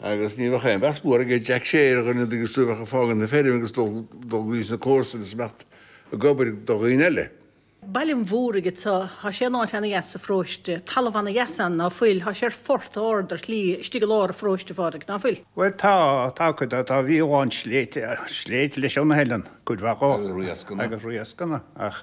Agus ní bheadh aon mheas mór ag Jack Shay ar dhuine agus tú a bheadh ag fágaint na feirme agus dul go dtí na comharsain is imeacht ag obair do dhaoine eile. Baile an Mhúraigh atá, tá sé in áit ana-dheas sa pharóiste, talamh ana-dheas ann, ná fuil? Tá sé ar phort ard ar shlí istigh i lár an pharóiste, a Phádraig, ná fuil? Bhuel tá, tá cuid de, tá, bhí a lán sléibhte, sléibhte leis ann a Helen, cuid mhaith dhó, agus riascanna, ach.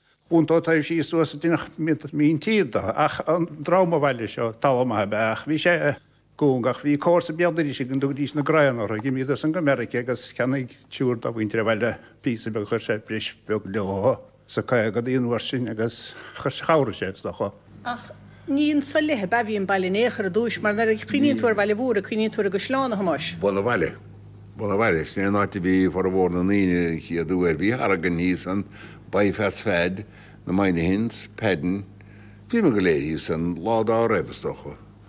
chuntóidh sí suas i dtrí mhíntír dó. Ach an dream an bhaile seo, talamh maith ab ea é, ach bhí sé cúng, ach bhí comharsa béal dorais againn, tugaidís na Grahams orthu, d'imíodar-san go Meirice agus cheannaigh triúr de mhuintir an bhaile píosa beag, chuir sé breis bheag leo sna caogaidí an uair sin agus chabhraigh sé, is dócha. Ach ní anso i leith a bhí an baile in aon chor i dtúis, mar nuair a chuimhníonn tú ar Bhaile an Mhúraigh cuimhníonn tú ar an gcaisleán, a Thomáis. Bun an bhaile. Bun an bhaile. Sin é an áit a bhí formhór na ndaoine an chéad uair. Bhí Horgan thíos ann, Baí Pheats Pheaid, na Moynihains, Peaidin, bhíomar go léir thíos ann lá dá raibh, is dócha.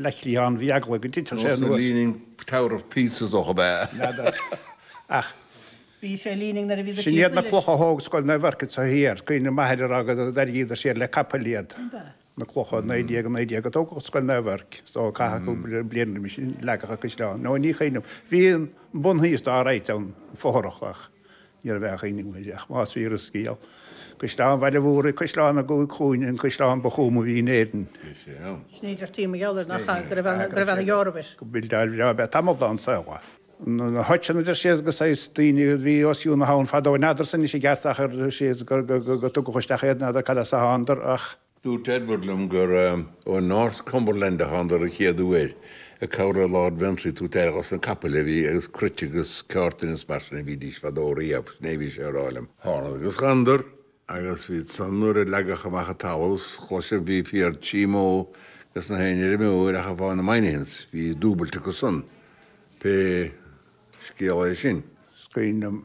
leithligh ann, bhí eagla go dtitfeadh sé anuas. leaning tower of Pisa is dócha, ab ea? N'fheadar. Ach. Bhí sé leaning nuair a bhí do Sin iad na clocha a thóg Scoil Naomh Eirc so thiar. Cuimhin liom m'athair a rá go dtairrigíodar siar le capaill iad, na clocha. 1919 a tógadh Scoil Naomh Eirc so caithfidh cúpla bliain roimis sin, leagadh an caisleán. No, ní cuimhin liom. Bhí an bun thíos alright ann, fothrach, ach. Ní raibh aon ní uaidh, ach más fíor an scéal, Caisleán Bhaile an Mhúraigh, caisleán na gcúig gcúinne, an caisleán ba thuama a bhí in Éirinn. Bhí sé ann. Sin é a deirtí mo dhealramh, nach ea? Go raibh ana dheor air. Gur building bhreá ab ea tamall dá saol. Na hoicheann, a deir siad, agus saghas daoine a bhí os cionn na habhann fadó, n'fheadar san anois i gceart, ach deir siad gur tugadh isteach iad, n'fheadar cad as a thánadar, ach. Dúirt Edward liom gur ó North Cumberland a thánadar an chéad uair, ag cabhrú le Lord Ventry, tabhairt aire dhos na capaill a bhí agus cruite agus ceártain is mar sin a bhídís fadó riamh, sin é a bhí sé a rá liom. Thánadar agus thánadar agus bhí san nuair a leagadh amach an talamh 's chloiseadh bhí féar trí mbó ages na haon fheirmeoir ach amháin na Moynihans bhí dúbailt acu san, pé scéal é sin. Is cuimhin liom